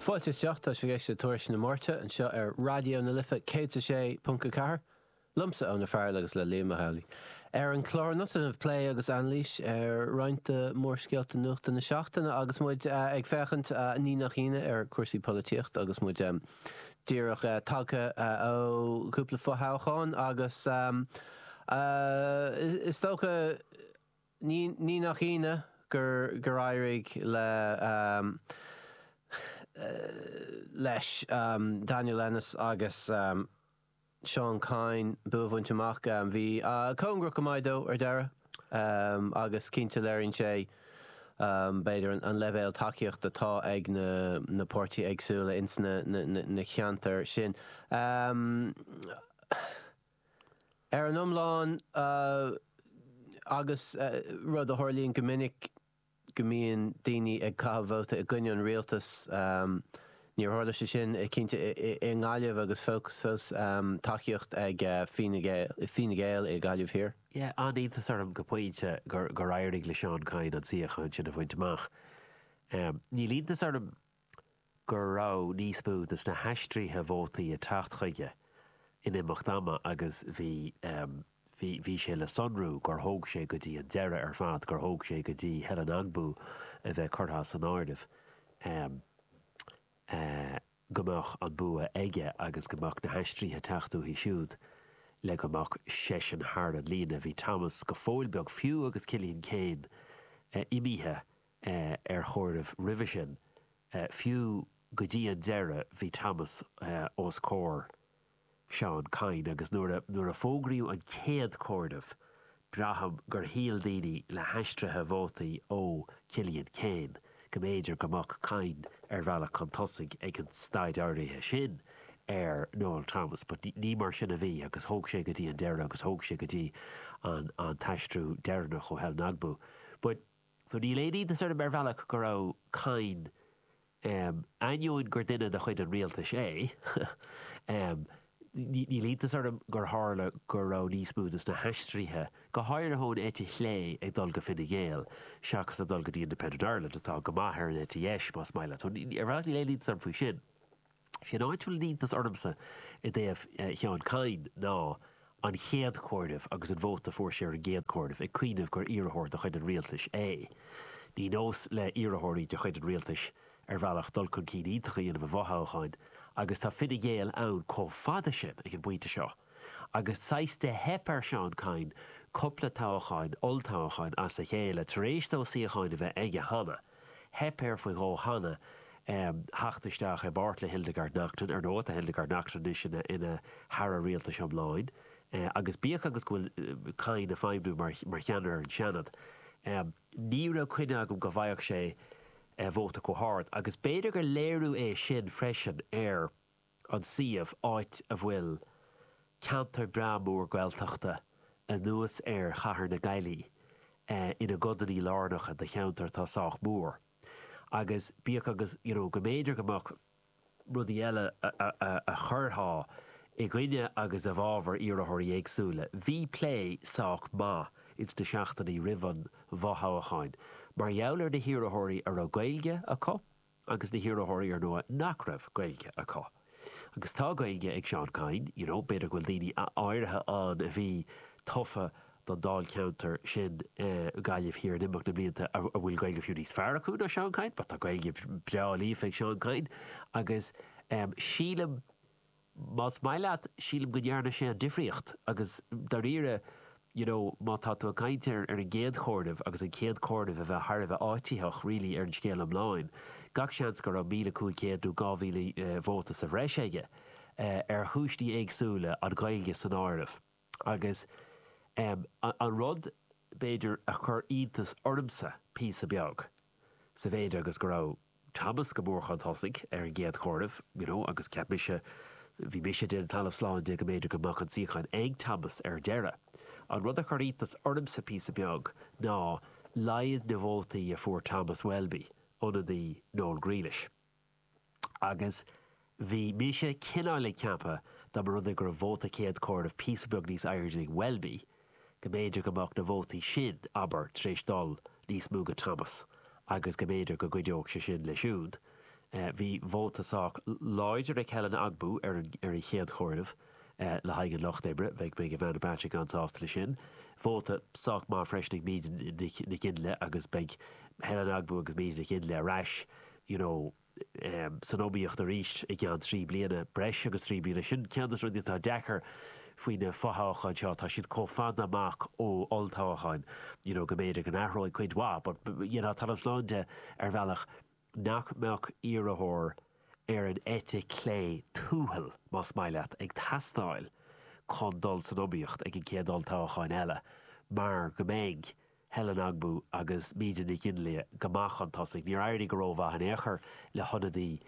Fáilte isteach, tá sibh ag éisteacht le Tuairisc na Máirte anseo ar Raidió na Life 106.4, liomsa Eoin O'Farrell agus le Liam Mac Amhlaigh. Ar an chlár anocht déanfaimid plé agus anailís ar roinnt de mhórscéalta nuachta na seachtaine agus muid ag féachaint ní nach ionadh ar chúrsaí polaitíocht agus muid díreach tagtha ó chúpla fo-thoghchán agus is dócha Ní nach ionadh gur éirigh le leis Daniel Ennis agus Seán Kyne bua a bhaint amach. Bhí cóngarach go maith ar ndóigh ar deireadh agus cinnte léiríonn sé, b'fhéidir, an leibhéal tacaíochta atá ag na páirtithe éagsúla ins na ceantair sin. Ar an iomlán, agus rud a tharlaíonn go minic go mbíonn daoine ag caitheamh vóta i gcoinne an rialtais, níor tharla sé sin cinnte i nGaillimh agus fós fós tacaíocht ag Fine Gael i nGaillimh Thiar. Yeah, an-iontas orm go pointe gur éirigh le Seán Kyne an suíochán sin a bhaint amach. Níl iontas orm go raibh níos mó de na haistrithe vótaí ag teacht chuige in imeacht ama agus bhí, bhí, bhí sé le sonrú gur thóg sé go dtí an deireadh ar fad, gur thóg sé go dtí Helen Ogbu a bheith curtha as an áireamh, go mbeadh an bua aige agus go mbeadh na haistrithe ag teacht uaithi siúd le go mbeadh seisean thar an líne. Bhí Thomas go fóill beo, fiú agus Cillian Keane imithe, ar chomhaireamh roimhe sin. Fiú go dtí an deireadh bhí Thomas os comhair Sheán Kyne agus nuair a fógraíodh an chéad chomhaireamh braithim gur shíl daoine le haistrithe vótaí ó Chillian Keane go mb'fhéidir go mbeadh Kyne ar bhealach chun tosaigh ag an staid áirithe sin ar Noel Thomas but ní mar sin a bhí agus thóg sé go dtí an deireadh agus thóg sé go dtí an t-aistriú deireanach ó Helen Ogbu but So níl aon iontas orm ar bhealach go raibh Kyne, ainneoin gur duine de chuid an rialtais é, níl iontas orm gur tharla go raibh níos mó de na haistrithe, go háirithe ón eite chlé, ag dul go Fine Gael seachas ag dul go dtí Independent Ireland, atá go maith ar an eite dheis, más maith leat. So ar bhealach níl aon iontas orm faoi sin. Is é an áit a bhfuil an t-iontas ormsa i dtaobh Sheáin Kyne ná an chéad chomhaireamh agus an vóta a fuair sé ar an gcéad chomhaireamh, ag cuimhneamh gur iarrthóir de chuid an rialtais é. Ní nós le hiarrthóirí de chuid an rialtais, ar bhealach, dul chun cinn iontach a dhéanamh i bhfothoghcháin agus tá Fine Gael ann chomh fada sin ag an bpointe seo agus saghas de theip ar Sheán Kyne cupla toghcháin, olltoghcháin, as a chéile, tar éis dó suíochán a bheith aige cheana. Theip air faoi dhó cheana theacht isteach i bpáirt le Hildegarde Naughton. Ar ndóigh, tá Hildegarde Naughton anois ina hAire Rialtais iomlán agus bíodh agus go bhfuil Kyne ag feidhmniú mar cheannaire ar an Seanad, ní raibh coinne agam go bhfaigheadh sé vóta chomh hard agus b'fhéidir gur léiriú é sin freisin ar. an suíomh, áit a bhfuil ceantar breá mór Gaeltachta anuas ar chathair na Gaillimhe ina gcodannaí lárnacha de cheantar atá sách mór. Agus bíodh agus you know go mb'fhéidir go mbeadh rudaí eile a chuirtheá i gcoinne agus i bhfabhar iarrthóirí éagsúla, bhí plé sách maith ins na seachtainí roimh an bhfothoghchán mar gheall ar na hiarrthóirí a raibh Gaeilge acu, agus na hiarrthóirí ar ndóigh nach raibh Gaeilge acu. Agus tá Gaeilge ag Seán Kyne, you know, b'fhéidir go bhfuil daoine áirithe ann a bhí tofa don dáilcheantar sin, Gaillimh Thiar, in imeacht na mblianta a bhfuil Gaeilge fiú níos fearr acu ná Seán Kyne, but tá Gaeilge breá líofa ag Seán Kyne agus sílim, Más maith leat, sílim go ndearna sé an difríocht agus, dáiríre, you know, má tá tú ag caint ar an gcéad chomhaireamh agus an chéad chomhaireamh a bheith thar a bheith áititheach really ar an scéal iomlán, gach seans go raibh míle cúig chéad nó dhá mhíle vóta sa bhreis aige, ar chúinsí éagsúla, an Ghaeilge san áireamh. Agus an rud, b'fhéidir, a chuir iontas ormsa píosa beag, sa mhéid agus go raibh Thomas go mór chun tosaigh ar an gcéad chomhaireamh, you know, agus cheap mise, bhí mise ag déanamh talamh slán de go mb'fhéidir go mbeadh an suíochán ag Thomas ar deireadh. An rud a chuir iontas ormsa píosa beag ná laghad na vótaí a fuair Thomas Welby, ionadaí Noel Grealish. agus bhí mise cineáil ag ceapadh dá mba rud é go raibh vóta céad chomhaireamh píosa beag níos airde ag Welby go mb'fhéidir go mbeadh na vótaí sin, abair, tar éis dul níos mó go Thomas agus go mb'fhéidir go gcuideodh sé sin leisean. Bhí vóta sách láidir ag Helen Ogbu ar an chéad chomhaireamh. le haghaidh an lucht oibre, beidh, beidh Ivana Bacik an-sásta leis sin. Vóta sách maith freisin ag Míde Nic Fhionnlaoich agus beidh Helen Ogbu agus Míde Nic Fhionnlaoich ar ais, you know, san iomaíocht arís i gceann trí bliana, breis agus trí bliana. Sin ceann de na rudaí atá deacair faoi na fothoghcháin seo, tá siad chomh fada amach ó olltoghchán, you know, go mb'fhéidir go n-athróidh cuid mhaith but dhéanfainn talamh slán de ar bhealach. nach mbeadh iarrthóir ar an eite chlé tuathal, más maith leat, ag teastáil chun dul san iomaíocht ag an gcéad olltoghchán eile, mar go mbeidh Helen Ogbu agus Míde Nic Fhionnlaoich go maith chun tosaigh. Níor éirigh go rómhaith in aon chor le hionadaí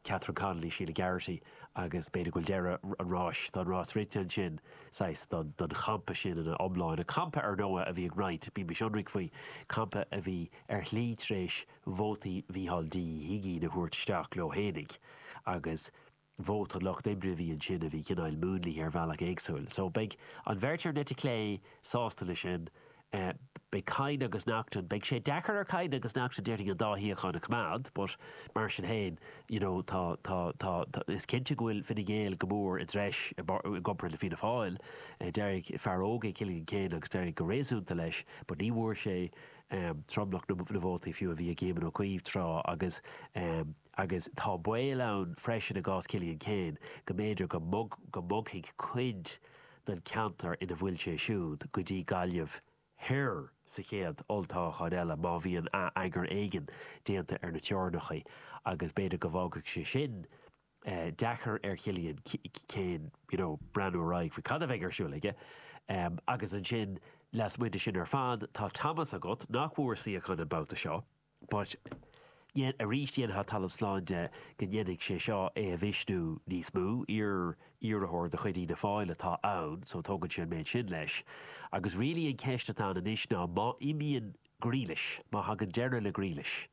Catherine Connolly, Sheila Garrity, agus b'fhéidir go bhfuil deireadh an ráis, tá an rás rite ansin, saghas, don champa sin ina iomláine. Campa, ar ndóigh, a bhí ag roinnt, bímis ionraic faoi, campa a bhí, ar shlí tar éis vótaí Mhícheál D. Ó hUigínn a thabhairt isteach leo fhéinig, agus vóta an lucht oibre a bhí ansin a bhí cineáil múnlaithe ar bhealach éagsúil. So, beidh an bheirt ar an eite chlé sásta leis sin. Beidh Kyne agus Naughton, beidh sé deacair ar Kyne agus Naughton déarfainn an dá shuíochán a choimeád, but mar sin féin, you know, tá, tá, tá, tá, is cinnte go bhfuil Fine Gael go mór i dtreis i gcomparáid le Fianna Fáil. D'éirigh, fear óg é Cillian Keane agus d'éirigh go réasúnta leis, but ní bhfuair sé, tromlach na vótaí fiú a bhí ag Éamon Ó Cuív tráth agus agus tá baol ann freisin i gcás Chillian Keane go mb'fhéidir go mbogfaidh cuid den cheantar ina bhfuil sé siúd go dtí Gaillimh Thoir sa chéad olltoghchán eile má bhíonn atheagar éigin déanta ar na teorainneacha agus b'fhéidir go bhfágfaidh sé sin deacair ar Chillian Keane, you know, breathnú ar aghaidh faoi cad a bheidh ar siúl aige. Agus ansin, lasmuigh de sin ar fad, tá Thomas agat, nach bhfuair suíochán an babhta seo, but dhein, arís, dhéanfá talamh slán de go ndéanfaidh sé seo é a mhisniú níos mó, iar-iarrthóir de chuid Fhianna Fáil atá ann, so tógann sé an méid sin leis. Agus really an cheist atá ann anois ná má imíonn Grealish, má thagann deireadh le Grealish,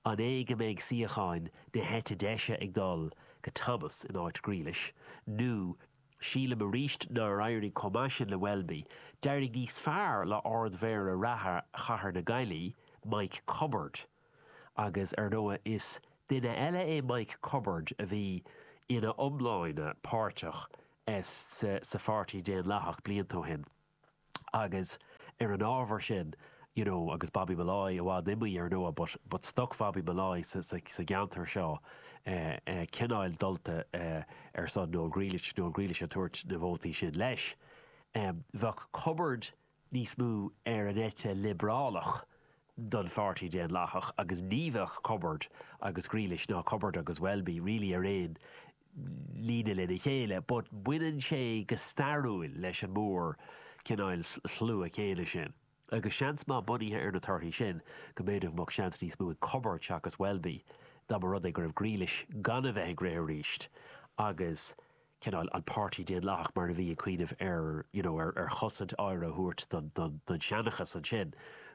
An é go mbeidh suíochán na heite deise ag dul go Thomas in áit Grealish, nó sílim arís nár éirigh chomh maith sin le Welby, d'éirigh níos fearr le Ard-Mhéara reatha chathair na Gaillí, Mike Cubbard. Agus ar ndóigh is duine eile é Mike Cubbard a bhí ina iomláine páirteach sa Pháirtí Daonlathach blianta ó shin. Agus ar an ábhar sin, you know, agus Bobby Molloy i bhfad imithe, ar ndóigh, but, but stoc Bhobby Molloy sa, sa, sa gceantar seo, eh, eh, cineáil dulta, eh, ar son Noel Grealish, Noel Grealish ag tabhairt na vótaí sin leis, em, bheadh Cubbard níos mó ar an eite liobrálach don Pháirtí Daonlathach agus ní bheadh Cubbard agus Grealish ná Cubbard agus Welby really ar aon líne lena chéile, but baineann sé go stairiúil leis an mór cineáil shlua céanna sin, agus seans maith, bunaithe ar na torthaí sin, go mb'fhéidir go mbeadh seans níos mó ag Cubbard seachas Welby dá mba rud é go raibh Grealish gan a bheith ag rith arís agus cineáil an Páirtí Daonlathach mar a bhí ag cuimhneamh ar you know ar ar chosaint áirithe a thabhairt don don don seanchas ansin.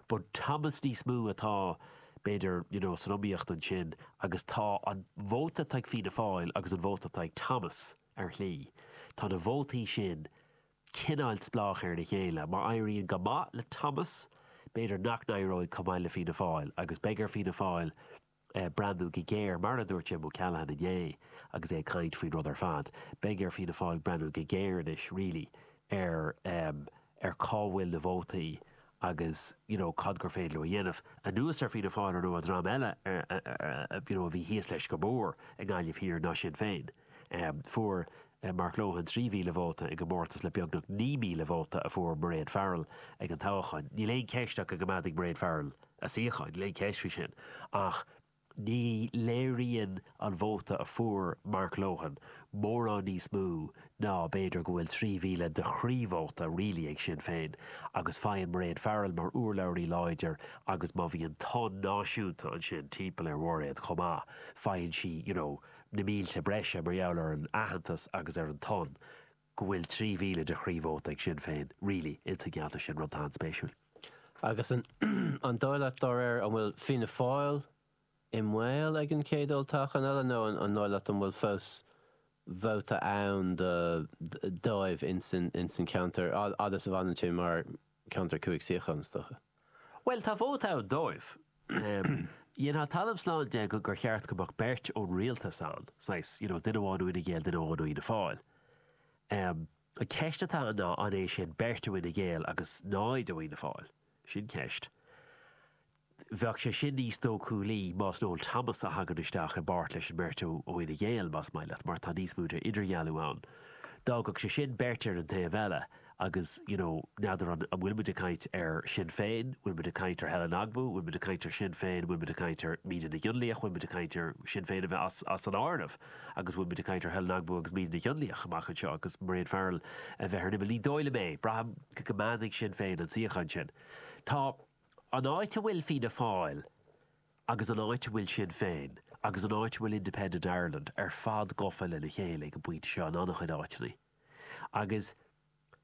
But Thomas níos mó atá b'fhéidir, you know san iomaíocht ansin agus tá an vóta atá ag Fianna Fáil agus an vóta atá ag Thomas, ar shlí, tá na vótaí sin cineáil spleách ar a chéile. Má éiríonn go maith le Thomas, b'fhéidir nach n-éireoidh chomh maith le Fianna Fáil agus beidh ar Fianna Fáil breathnú go géar, mar a dúirt Jim O'Callaghan inné agus é ag caint faoin rud ar fad, beidh ar Fianna Fáil breathnú go géar anois really ar cá bhfuil na vótaí agus you know cad gur féidir leo a dhéanamh, anuas ar Fianna Fáil ar ndóigh dream eile ar a you know a bhí thíos leis go mór i nGaillimh Thiar ná Sinn Féin. Em fuair Mark Lohan 3,000 vóta i gcomórtas le beagnach 9,000 vóta a fuair Mairéad Farrell ag an toghchán. Níl aon cheist ach go gcoimeádfaidh Mairéad Farrell a suíochán, níl aon cheist faoi sin, ach. Ní léiríonn an vóta a fuair Mark Lohan mórán níos mó ná b'fhéidir go bhfuil 3,000 de chroí-vóta really ag Sinn Féin agus faigheann Mairéad Farrell mar urlabhraí láidir agus má bhíonn tonn náisiúnta ansin timpeall ar Mhairéad chomh maith, faigheann sí, you know, na mílte breise mar gheall ar an aitheantas agus ar an tonn. go bhfuil 3,000 de chroí-vóta ag Sinn Féin, really, insan gceantar sin, rud atá an-spéisiúil. Agus an an dóigh leat, dá réir, an bhfuil Fianna Fáil i mbaol ag an chéad olltoghchán eile nó an dóigh leat an bhfuil fós vóta ann dóibh insan insan cheantar fhad is a bhfanann sé mar ceantar cúig suíochán, is dócha. Bhuel, tá vóta ann dóibh. Dhéanfá talamh slán de go, gur cheart go mbeadh beirt ón rialtas ann, saghas, you know, duine amháin ó Fhine Gael, duine amháin ó Fhianna Fáil. An cheist atá ann ná, an é sin beirt ó Fhine Gael agus náid ó Fhianna Fáil? Sin ceist. Bheadh sé sin níos dócúlaí más Noel Thomas a thagann isteach i bpáirt leis an mbeirt ó Fhine Gael, más maith leat, mar tá níos mó d'idirdhealú ann. D'fhágfadh sé sin beirt ar an taobh eile agus, you know, n'fheadar an bhfuil muid ag caint ar Shinn Féin, bhfuil muid ag caint ar Helen Ogbu, bhfuil muid ag caint ar Shinn Féin, bhfuil muid ag caint ar Míde Nic Fhionnlaoich, bhfuil muid ag caint ar Shinn Féin a bheith as, as an áireamh agus bhfuil muid ag caint ar Helen Ogbu agus Míde Nic Fhionnlaoich amach anseo agus Mairéad Farrell a bheith ar an imeall. Ní dóigh liom é. Braithim go gcoimeádfaidh Sinn Féin an suíochán sin. Tá. An áit a bhfuil Fianna Fáil agus an áit a bhfuil Sinn Féin agus an áit a bhfuil Independent Ireland ar fad gafa lena chéile ag an bpointe seo in an-chuid áiteanna, agus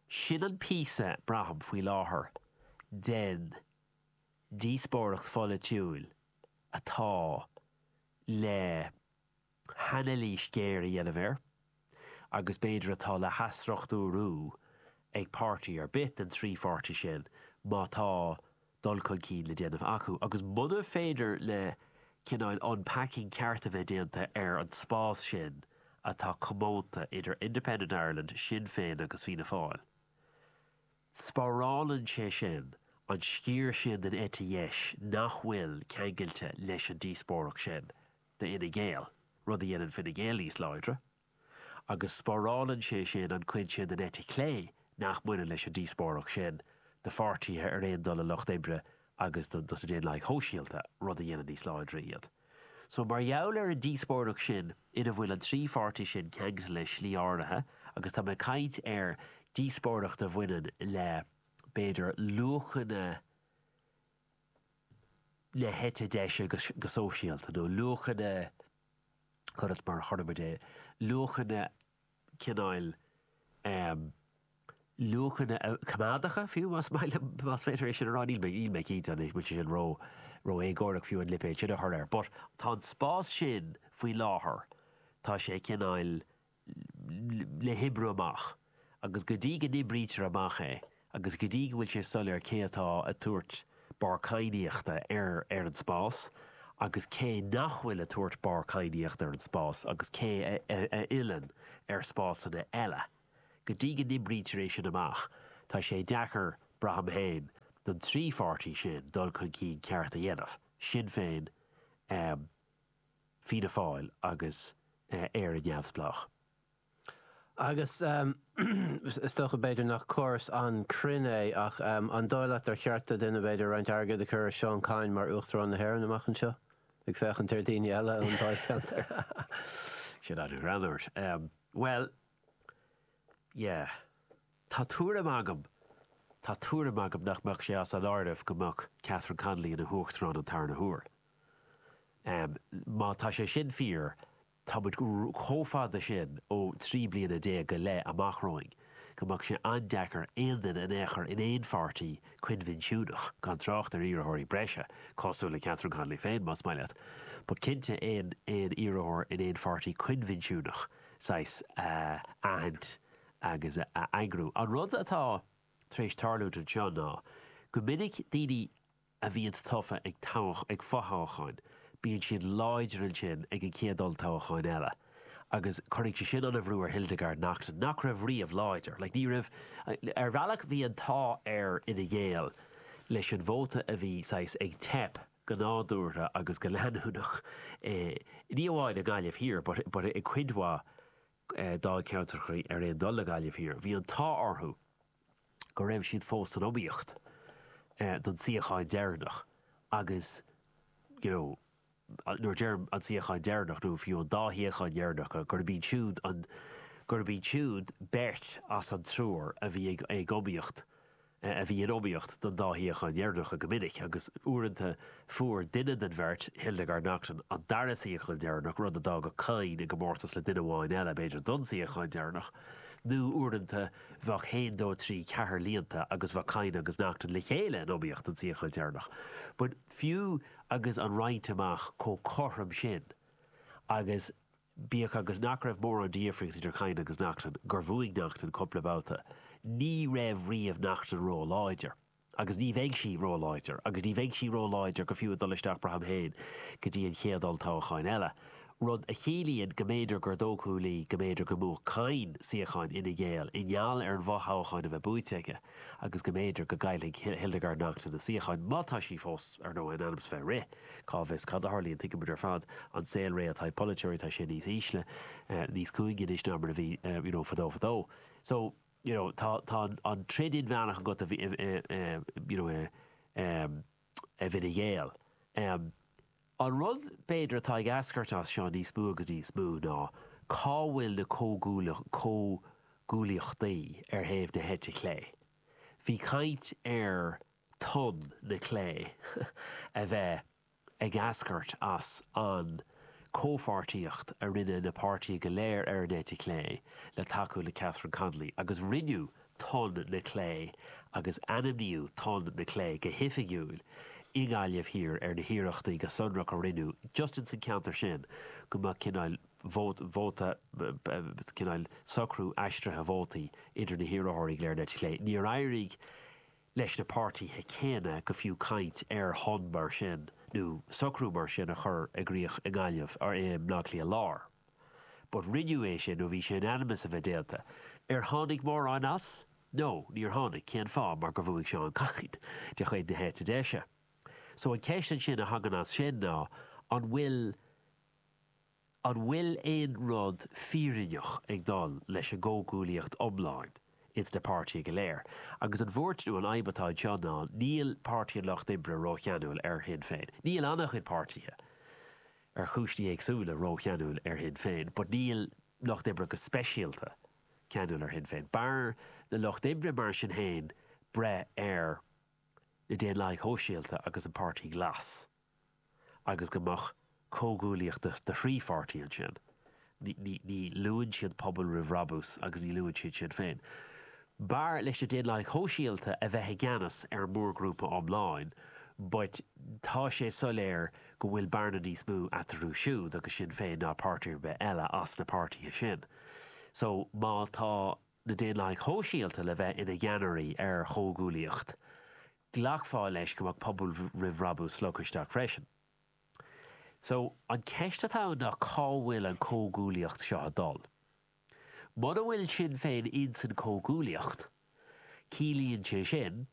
sin an píosa, braithim, faoi láthair, den díospóireacht pholaitiúil atá le. hanailís ghéar a dhéanamh air, agus b'fhéidir atá le hathstruchtúrú ag páirtí ar bith den trí pháirtí sin, má tá dul chun cinn le déanamh acu, agus muna féidir le cineáil unpacking ceart a bheith déanta ar an spás sin atá comónta idir Independent Ireland, Sinn Féin agus Fianna Fáil. Spárálann sé sin an sciar sin den eite dheis nach bhfuil ceangailte leis an díospóireacht sin. d'Fhine Gael, rud a dhéanann Fine Gael níos láidre, agus spárálann sé sin an chuid sin den eite chlé nach mbaineann leis an díospóireacht sin do pháirtithe ar aon dul leis an Lucht Oibre agus dos na Daonlathaigh Shóisialta, rud a dhéanann níos láidre iad. So, mar gheall ar an díospóireacht sin ina bhfuil an trí pháirtí sin ceangailte le stíl áirithe, agus tá mé ag caint ar dhíospóireacht a bhaineann le, b'fhéidir, luachanna, na heite deise go sóisialta, nó luachanna, conas mar a chuireann muid é, luachanna cineáil, luachanna coimeádacha, fiú, más féidir é sin a rá, níl mé, níl mé cinnte anois, bhfuil sé sin ró, ró-éagórach, fiú, an lipéad sin a chur air. But, tá an spás sin faoi láthair, tá sé cineáil, le hoibriú amach, agus go dtí go n-oibrítear amach é, agus go dtí go bhfuil sé soiléir cé atá ag tabhairt barr cadhnaíochta ar ar an spás agus cé nach bhfuil ag tabhairt barr cadhnaíochta ar an spás agus cé a fhilleann ar spásanna eile, go dtí go n-oibrítear é sin amach, tá sé deacair, braithim féin, don trí pháirtí sin dul chun cinn ceart a dhéanamh, Sinn Féin, Fianna Fáil agus Éire Neamhspleách. Agus is dócha, b'fhéidir, nach comhartha an-chruinn é, ach an dóigh leat gur cheart do dhuine, b'fhéidir, roinnt airgid a chur ar Seán Kyne mar Uachtarán na hÉireann amach anseo, ag féachaint ar dhaoine eile ón dáilcheantar? Sea, ar aon nós. Bhuel, yeah. Tá tuairim agam, tá tuairim agam nach mbeadh sé as an áireamh go mbeadh Catherine Connolly ina hUachtarán an tarna huair. Má tá sé sin fíor, tá muid chomh fada sin ó thrí bliana déag go leith amach romhainn go mbeadh sé an-deacair aon duine in aon chor in aon pháirtí coinbhinsiúnach, gan trácht ar iarrthóirí breise, cosúil le Catherine Connolly féin, más maith leat, but cinnte aon aon iarrthóir in aon pháirtí coinbhinsiúnach, saghas, a aithint agus a eagrú. An rud atá tar éis tarlúint anseo ná go minic daoine, a bhíonns tofa ag fothoghcháin, bíonn siad láidir ansin ag an chéad olltoghchán eile, agus cuirfidh sé sin an-bhrú ar Hildegarde Naughton, nach raibh riamh láidir. Like, ní raibh, ar bhealach bhí an t-ádh ar Fhine Gael leis an vóta a bhí saghas ag teip go nádúrtha agus go leanúnach i, ní amháin i nGaillimh Thiar, but, but i gcuid mhaith dáilcheantracha ar aon dul le Gaillimh Thiar. Bhí an t-ádh orthu. go raibh siad fós san iomaíocht don tsuíochán deireanach agus, you know, nuair a deirim an suíochán deireanach nó fiú an dá shuíochán dheireanacha, gurb iad siúd an, gurb iad siúd beirt as an triúr a bhí ag iomaíocht, a bhí in iomaíocht don dá shuíochán dheireanacha go minic agus uaireanta fuair duine den bheirt, Hildegarde Naughton, an dara suíochán deireanach, rud a d'fhágadh Kyne i gcomórtas le duine amháin eile, b'fhéidir, don tsuíochán deireanach nó uaireanta. Bheadh haon, dó, trí, ceathair líonta agus bheadh Kyne agus Naughton le chéile in iomaíocht don tsuíochán deireanach. But fiú agus an roinnt amach chomh cothrom sin, agus bíodh agus nach raibh mórán de dhifríocht idir Kyne agus Naughton, gur bhuaigh Naughton cúpla babhta, ní raibh riamh Naughton róláidir. agus ní bheidh sí róláidir, agus ní bheidh sí róláidir go fiú ag dul isteach braithim féin go dtí an chéad olltoghchán eile, rud a chiallaíonn go mb'fhéidir gur dóchúlaí go mb'fhéidir go mbuafadh Kyne suíochán Fhine Gael i ngeall ar an bhfothoghchán a bheith buaite aige agus go mb'fhéidir go gcaillfidh Hildegarde Naughton a suíochán, má tá sí fós, ar ndóigh, in ainm's bheith ag rith, cá bhfios cad a tharlaíonn, tuigimid ar fad an saol réidh atá ag polaiteoirí, tá sé níos ísle, níos cúinge anois ná mar a bhí, you know, fadó fadó. So. you know tá tá an an troid inmheánach agat a bhí you know i i bhFine Gael em an rud b'fhéidir atá ag eascairt as seo níos mó agus níos mó ná cá bhfuil na comhghuaillíocht comhghuaillíochtaí ar thaobh na heite clé bhí caint ar tonn na clé a bheith ag eascairt as an comhpháirtíocht a rinne na páirtithe go léir ar an eite chlé le tacú le Catherine Connolly agus rinneadh Tonn na Clé agus ainmníodh Tonn na Clé go hoifigiúil i nGaillimh Thiar ar na hiarrachtaí go sonrach a rinneadh just in san cheantar sin go mbeadh cineál vóta cineál socrú aistrithe vótaí idir na hiarrthóirí go léir ar an eite chlé. Níor éirigh leis na páirtithe céanna go fiú caint ar thonn mar sin nó socrú mar sin a chur i gcrích i nGaillimh ar i mBleá Cliath Láir. But rinneadh é sin nó bhí sé in ainm is a bheith déanta. Ar tháinig mórán as? No, níor tháinig. Cén fáth? Mar gur bhuaigh Seán Kyne de chuid na heite deise. So an cheist ansin a thagann as sin ná an bhfuil. An bhfuil aon rud fírinneach ag dul leis an gcomhghuaillíocht iomlán ins na páirtithe go léir? Agus an bhuairt nó an fhadhb atá anseo ná, níl Páirtí an Lucht Oibre rócheanúil ar Shinn Féin. Níl an-chuid páirtithe, ar chúiseanna éagsúla, rócheanúil ar Shinn Féin, but níl Lucht Oibre go speisialta ceanúil ar Shinn Féin. B'fhearr le Lucht Oibre, mar sin féin, breith ar na Daonlathaigh Shóisialta agus an Páirtí Glas. agus go mbeadh comhghuaillíocht de thrí pháirtí ansin, ní luann siad Pobal Roimh Bhrabús agus ní luann siad Sinn Féin. B'fhearr leis na Daonlathaigh Shóisialta a bheith i gceannas ar an mórghrúpa iomlán, but tá sé soiléir go bhfuil bearna níos mó eatarthu siúd agus Sinn Féin ná páirtí ar bith eile as na páirtithe sin. So, má tá na Daonlathaigh Shóisialta le bheith ina gceannairí ar chomhghuaillíocht, ghlacfá leis go mbeadh Pobal Roimh Bhrabús slogtha isteach freisin. So, an cheist atá ann ná cá bhfuil an chomhghuaillíocht seo ag dul? Mura bhfuil Sinn Féin insan chomhghuaillíocht, ciallaíonn sé sin